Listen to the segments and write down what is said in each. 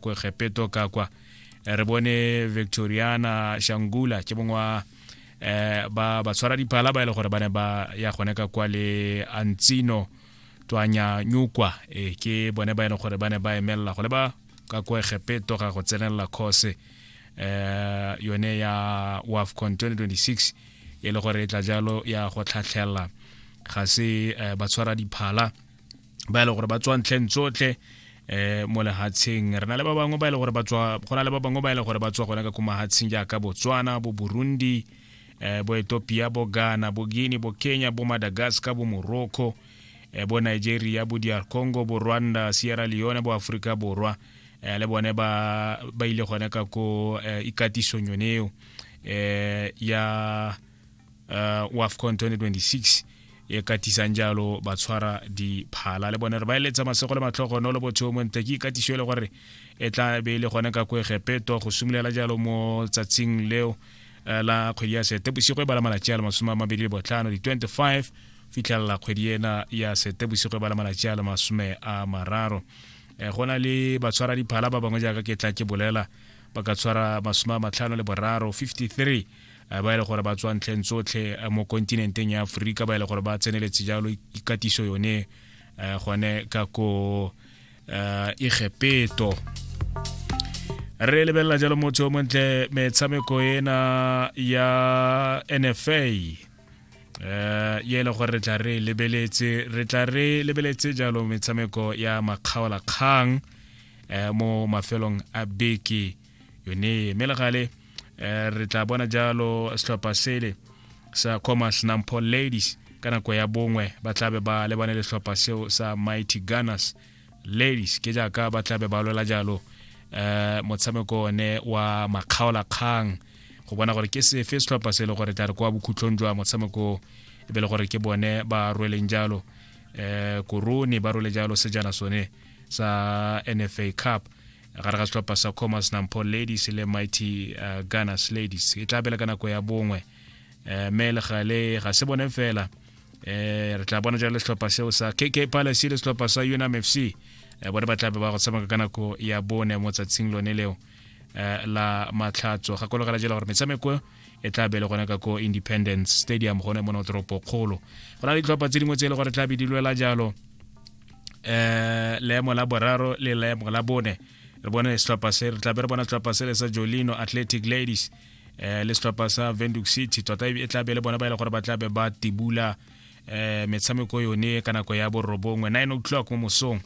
ko gepeto ka kwa eh, re bone victoriana shangula ke mongwe wa eh, ba ba tshwara diphala ba e le gore ba ne ba ya gone ka kwa le antsino twanya nyukwa e ke bone ba e leng gore ba ne ba emelela go le ba ka kwa gepeto ga go tsenelela course eh yone ya wafcon 2026 e le gore e tla jalo ya go tlhatlhela ga se eh, ba tshwara diphala ba e le gore ba tswa ntlheng tsotlhe eh mo lehatsheng re na le ba bangwe ba e le gore ba tswa go na le ba bangwe ba e le gore ba tswa gona ka ko mahatsheng jaaka botswana bo burundi eh bo ethiopia bo ghana bo guinea bo kenya bo madagascar bo morocco eh bo nigeria bo dr congo bo rwanda sierra leone bo aforika borwa eh le bone ba ba ile gone ka ko eh, ikatisong yone eo eh ya uh, wa afcon 2026 e katisang jalo ba tshwara diphala le bone re ba eletsa masego le matlhogo no le botho mo nte ke ikatiso e le gore e tla be e le gone ka kwegepeto go simolola jalo mo tsatsing leo eh, la kgwedi ya setebosigo e bala malatsi a le masome a mabedi le botlhano di-25 fitlhelela kgwedi ena ya setebosigo e bala malatsi a le masome a mararo um go na le batshwara diphala ba bangwe jaaka ke tla ke bolela ba ka tshwara masome a matlhano le boraro 53 ba e le gore ba tswa ntlheng tsotlhe mo kontinenteng ya aforika ba e le gore ba tseneletse jalo ikatiso yone gone ka ko egepeto re lebelela jalo motho o montle metshameko ena ya nfa ye e le gore re tla re lebeletse re tla re lebeletse jalo metshameko ya makgaolakgang mo mafelong a beke yone mme le gale um re tla bona jalo setlhopha sele sa commerce nampho ladies ka nako ya bongwe ba tlabe ba lebane le setlhopha seo sa mighty gunners ladies ke jaaka ba tlabe ba lwela jalo um motshameko one wa makgaolakgang go bona gore ke sefe setlhopha se e le gore tla re kwa bokhutlhong jwa motshameko e be le gore ke bone ba rweleng jalo um korone ba rwele jalo sejana sone sa nfa cup gare ga setlhopha sa commerce nampo ladies le mighty uh, gunners ladies e tla bela ka nako ya bongwe um mme le gale ga se bone fela um re tla bona jalo setlhopha seo sa kk palace le setlhopha sa unam f c um bone ba tla be ba go tshameka ka nako ya bone mo tsatsing lone leo um la matlhatso gakologela jela gore metshameko e tla be le gone ka ko independence stadium gone mo no toropo kgolo go na le ditlhopha tse dingwe tse e le gore tla be di lwela jalo eh leemo la boraro le leemo la bone re bone setlhopha se re tlabe re bona setlhopha se le sa jolino athletic ladies eh le setlhopha sa venduc city tota e tlabe le bona ba e le gore ba tlabe ba tibula eh metshameko yone ka nako ya borobongwe 9 o'clock mo mosong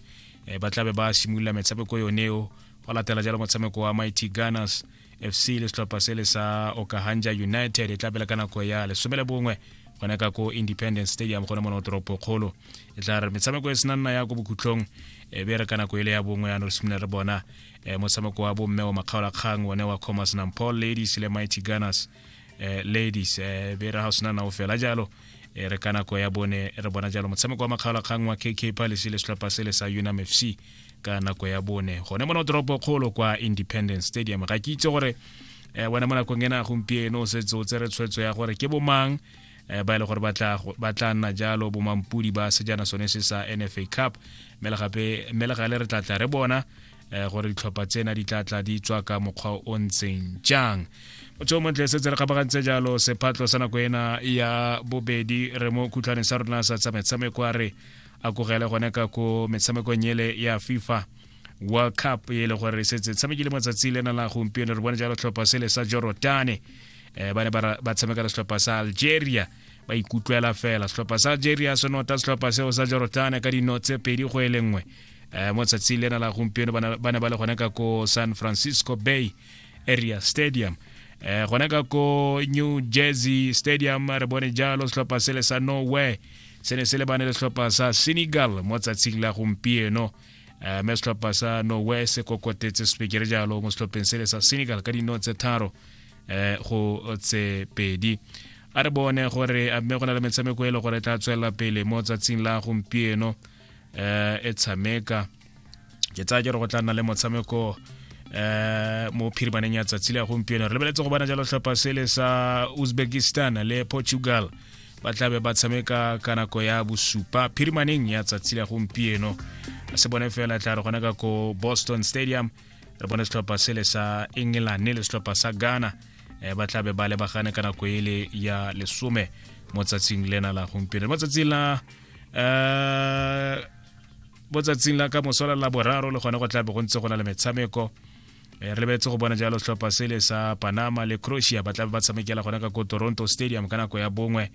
eh ba tlabe ba simolola metshameko yoneo go latela jalo motshameko wa mighty gunners fc le setlhopha se le sa okahanja united e tlapela ka nako ya lesome le bongwe gone ka ko independence stadium gone mono toropo kgolo e tla re metshameko e sena nna ya ko bokhutlong e be re ka nako ele ya bongwe yano re simolola re bona motshameko wa bomme wa makgaolakgang one wa commerce nampol ladies le mighty gunners eh, ladies eh, be re ga sena nao fela jalo eh, re ka nako ya bone re bona jalo motshameko wa makgaolakgang wa kk palace le setlhopha sele sa unam fc ka nako ya bone gone mona toropo kgolo kwa independence stadium ga ke itse gore eh, wena mo nakong ena gompieno o setse o tsere tshwetso ya gore ke bomang eh, ba e le gore ba tla go- ba tla nna jalo bomampudi ba sejana sone se sa nfa cup mme le gape mme le gale re tla tla re bona eh, gore ditlhopha tsena di tla tla di tswa ka mokgwa o ntseng jang motho o montle setse re kgabagantse jalo sephatlo sa nako ena ya bobedi re mo khutlhaneng sa rona sa tsa metshameko a re a kogele gone ka ko metshamekong ele ya fifa world cup e le gore re setse tshamekile matsatsi le na la gompieno re bone jalo tlhopha sele sa jorotane um eh, ba ne ba tshameka le setlhopha sa algeria ba ikutlwela fela setlhopha sa algeria se nota setlhopha seo sa jorotane ka dino tse pedi go e le nngwe um mo tsatsing lena la gompieno ba ne ba le gone ka ko san francisco bay area stadium eh gona ka ko new jersey stadium re bone jalo setlhopha se le sa norway se ne se le bane le setlhopha sa senegal mo tsatsing la gompieno um mme setlhopha sa norway se kokotetse sepekere jalo mo setlhopheng se le sa senegal ka dino tse tharo um go tse pedi a re bone gore a mme go na le metshameko e le gore e tla tswelela pele mo tsatsing la gompieno um e tshameka ke tsaya ke re go tla nna le motshameko um mo phiribaneng ya tsatsi le ya gompieno re lebeletse go bona jalo tlhopha sele sa uzbekistan le portugal ba tlabe ba tshameka ka nako ya bosupa phirimaneng ya tsatsi la gompieno se bone fela tla re gona ka ko boston stadium re bone setlhopha sele sa england le setlhopha sa ghana eh, ba tlabe ba lebagane ka nako ele ya lesome mo tsatsing lena la gompieno mo tsatsing la um mo tsatsing la ka mosola la boraro le gone go tlabe go ntse go na le metshameko Eh, re lebetse go bona jalo setlhopha sele sa panama le croatia ba tlabe ba tshamekela gona ka ko toronto stadium ka nako ya bongwe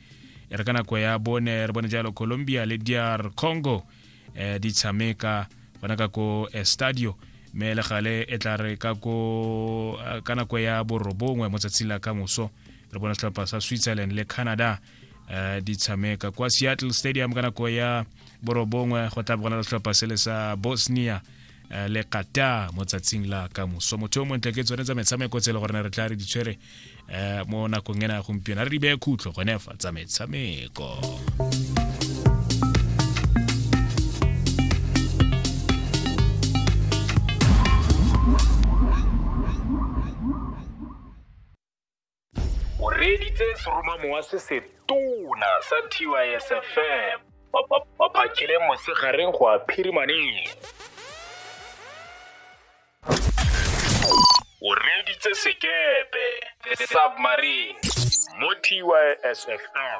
e re ka nako ya bone re bone jalo colombia le dr congo eh, di tshameka gona ka ko estadio mme le gale e tla re ka ko eh, ka nako ya borobongwe mo tsatsing la ka moso re bona setlhopha sa switzerland le canada uh, di tshameka kwa seattle stadium ka nako ya borobongwe go tla bogona setlhopha sele sa bosnia uh, le qatar mo tsatsing la ka moso motho yo montle ke tsone tsa metshameko tse e le gore re tla re di tshwere uh, mo nakong ena ya gompieno a re di beye khutlo gone fa tsa metshameko o reeditse seromamowa se se tona sa tysfm ba phakele mosegareng go a phirimaneng o reeditse sekepe the submarine mo tysfm